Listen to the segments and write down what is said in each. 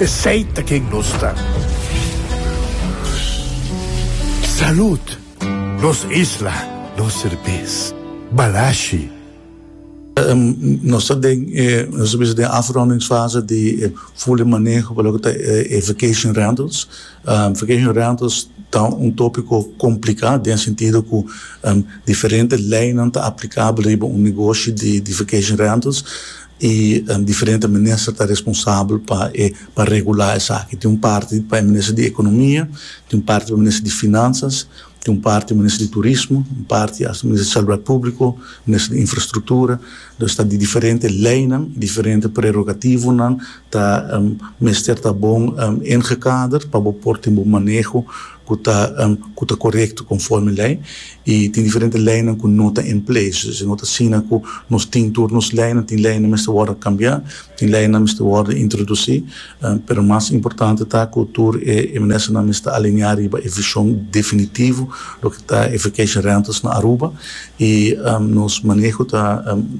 Esey ta ken nos ta. Salud! Nos isla, nos serbes. Balashi. Nos ta den e nos ta bisa den e afrondingsfase di e fule maneho pa loke ta e vacation rentals. Vacation rentals ta un topiko kompliká den sentido ku diferente leinan ta aplikabel riba un negoshi di vacation rentals. E diferente minister ta responsabel pa e pa regulá esaki. Tin un parti pa e minister di Ekonomia, tin un parti pa e minister di Finansas, tin un parti minister di Turismo, un parti hasta minister di Salubridad Públiko, minister di Infrastruktura. Pues ta di diferente leinan, diferente prerogativonan ta mester ta bon ingekader pa bo por tin bo maneho ku ta ku ta korekto konforme lei i tin diferente leinan ku no ta en ples e no ta asina ku nos tin tur nos leinan tin leinan mester wòrdu kambiá tin leinan mester wòrdu introdusí pero mas importante ta ku tur e e ministernan mester alineá riba e vishon definitivo loke ta e vacation rentals na Aruba i nos maneho ta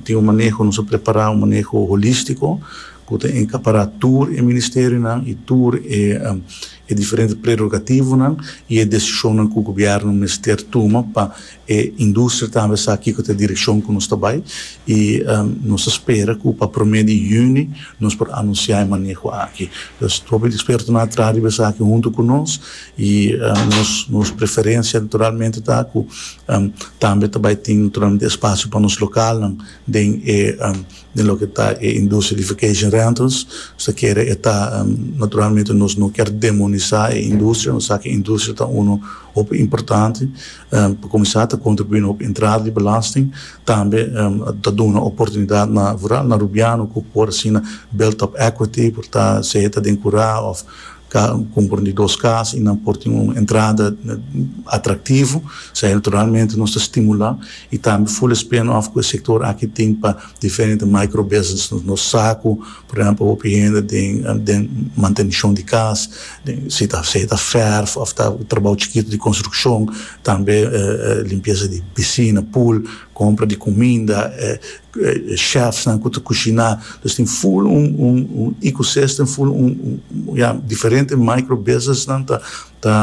tin un maneho nos a prepará un maneho holístiko ku ta enkapará tur e ministerionan i tur e e diferente prerogativonan i e desishonnan ku gobièrnu mester tuma pa e industria tambe sa kiko ta e direkshon ku nos ta bai i nos ta spera ku pa promé di yüni nos por anunsiá e maneho aki. Pues hopi di ekspertonan a traha riba esaki huntu ku nos i nos nos preferensia naturalmente ta ku tambe ta bai tin naturalmente espasio pa nos lokalnan den e den loke ta e industria di vacation rentals. Nos ta kere e ta, naturalmente nos no kier demonisa e industria, nos sa ke e industria ta uno hopi importante, pa kuminsá ta kontribuí na hopi entrada di belasting, tambe ta duna oportunidat na, vooral na rubiano ku por asina build up equity, por ta, sea ta den kurá òf. ka konpron di dos kas i nan por tin un entrada atraktivo, sa naturalmente nos ta stimulá i tambe ful espeno òf ku e sektor aki tin pa diferente micro business nos nos sa ku por ehèmpel hopi hende den den mantenishon di kas den si ta si ta fèrf òf ta trabou chikitu di konstrukshon tambe limpiesa di pisina, pool, kompra di kuminda. chefsnan ku ta kushiná los tin full un un un ecosystem full un un ya diferente micro businessnan ta ta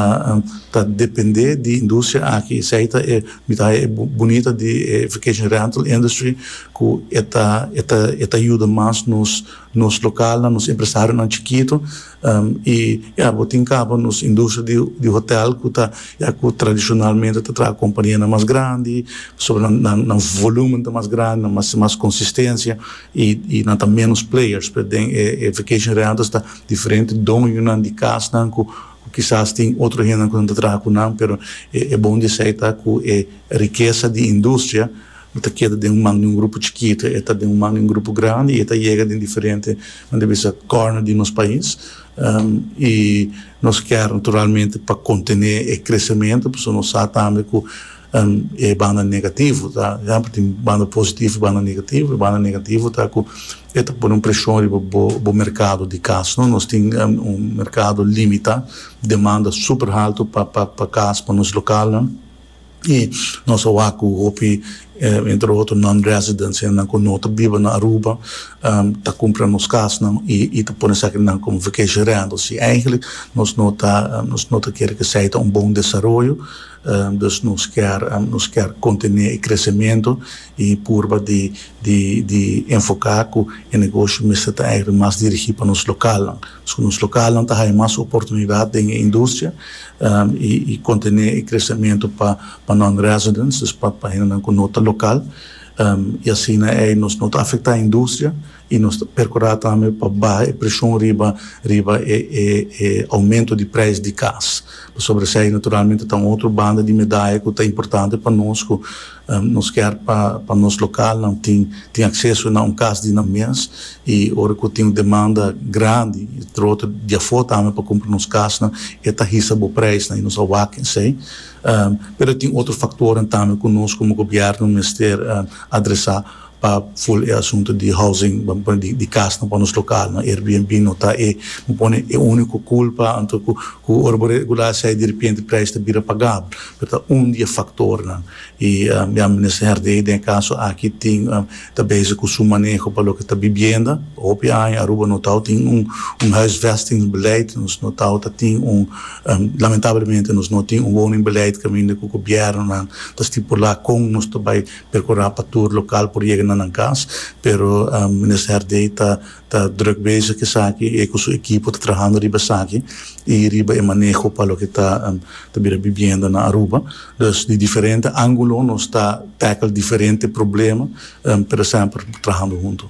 ta dependé di industria aki esei ta e mi ta haña e bunita di e vacation rental industry ku e ta e ta e ta yuda mas nos nos lokalnan nos empresarionan chikitu. Y ya bo tin caba nos industria di di hotel cu ta ya cu tradicionalmente ta traha companianan mas grandi pasobra nan nan nan volumen ta mas grandi nan mas mas consistencia y y nan ta menos players pero den e e vacation rentals ta diferente doñonan di casnan cu cu kisas tin otro hendenan cu nan ta traha cu nan pero e e bon di esey ta cu e rikesa di industria Bo ta keda den un man di un grupo chikitu, e ta den un man di un grupo grandi, i e ta yega den diferente, nan ta bisa, kòrner di nos pais. I nos kèr naturalmente pa kontené e kresementu, pasobra nos sa tambe ku e banda negativo ta, tempu tin banda positivo i banda negativo. E banda negativo ta ku e ta pone un preshon riba bo, bo merkado di kas. No, nos tin un merkado limitá, demanda super haltu pa, pa, pa kas, pa nos lokalnan. i nos a wak ku hopi entre otro non residents hennan ku no ta biba na Aruba ta kumpra nos kasnan i ta pone esakinan komo vacation rentals i eigentlik nos no ta nos no ta kere ku esei ta un bon desaroyo dus nos kier nos kier kontinua e kresementu E purba di di di enfoká ku e negoshi mester ta eigen mas dirigí pa nos lokalnan. Pasobra nos lokalnan ta haya mas oportunidat den e industria i i kontené e kresementu pa pa non-residents, dus pa pa hendenan ku no ta lokal, i asina ei nos no ta afektá e industria. I nos ta percurá tambe pa baha e presion riba riba e e e aumento di prijs di cas. Pasobra esei naturalmente ta un otro banda di medaya cu ta importante pa nos cu nos kier pa pa nos localnan tin tin acceso na un cas di nan mes. I ora cu tin un demanda grandi trote di afo tambe pa cumpra nos casnan e ta hisa bo prijsnan i nos a wak esei. Pero tin otro factornan tambe cu nos como gobierno mester adresa. pa full e asunto di housing bo a pone di casnan pa nos localnan Airbnb no ta e bo pone e unico culpa anto cu cu ora bo regula asai di repente prijs ta bira pagabel pero ta un di e factornan y ya minister Herdey den e caso aki tin ta bezig cu su maneho pa loke ta bibienda hopi aña Aruba no tawat tin un un huisvesting beleid nos no tawat ta tin un lamentablemente nos no tin un woningbeleid caminda cu gobiernonan ta stipula con nos ta bay. Percurá pa tur local por yega na nan cas, pero Minister Herdé ta ta druk bezig esaki, e cu su equipo ta trahando riba esaki y riba e maneho pa loke ta ta bira bibienda na Aruba. Dus di diferente angulo nos ta tackle diferente problema, pero semper trahando hunto.